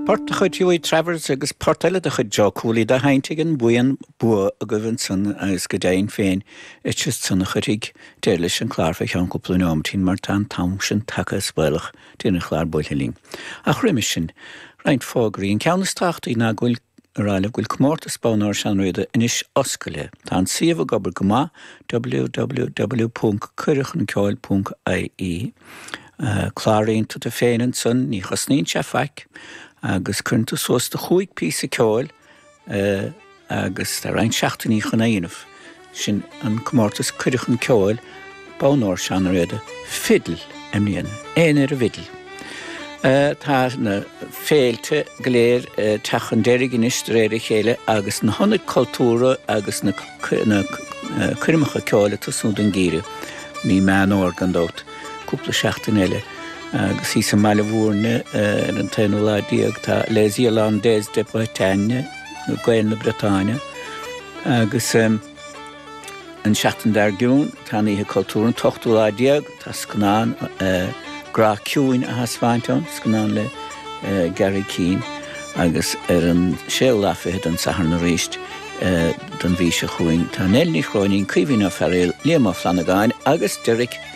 Port de chuid Hughie Travers agus port eile de chuid Joe Cooley dá sheinnt ag an buíon Bua agaibh ansan agus go deimhin féin iad san a chuirfidh deireadh leis an chlár fé cheann cúpla nóimeatín mar tá an t-am sin tagtha is baolach deireadh an chláir buailthe linn. Ach roimis sin, roinnt fógraí. An ceann is tábhachtaí ná go bhfuil. Araile go bhfuil comórtas bonn óir Seán Ó Riada anois oscailte. Tá an suíomh ag obair go maith, www.cuireadhchunceoil.ie. Cláraíonn tú tú féin ansan, ní chosnaíonn sé faic, agus cuireann tú suas do chúig píosa ceoil agus tá roinnt seachtainí chun é dhéanamh. Sin an comórtas cuireadh chun ceoil bonn óir Seán Ó Riada, fidil i mbliana, éinne ar an bhfidil. Tá na féilte go léir ag teacht chun deiridh anois de réir a chéile agus na hionaid cultúrtha agus na coirmeacha ceoil ag tosnú don ngeimhreadh. Mí Meán Fómhair gan dabht, cúpla seachtain eile agus thíos i mBaile Mhúirne ar an t-aonú lá déag tá Les Irlandais de Bretagne, Gaeil na Briotáine agus an tseachtain dár gcionn tá an Oíche Cultúr, an t-ochtú lá déag, tá scannán Grá Ciúin á thaispeáint ann, scannán le Garry Keane agus ar an séú lá fichead, an Satharn arís don mhí seo chugainn, tá Nell Ní Chróinín, Caoimhín Ó Fearaíl, Liam Ó Flannagáin agus Derek.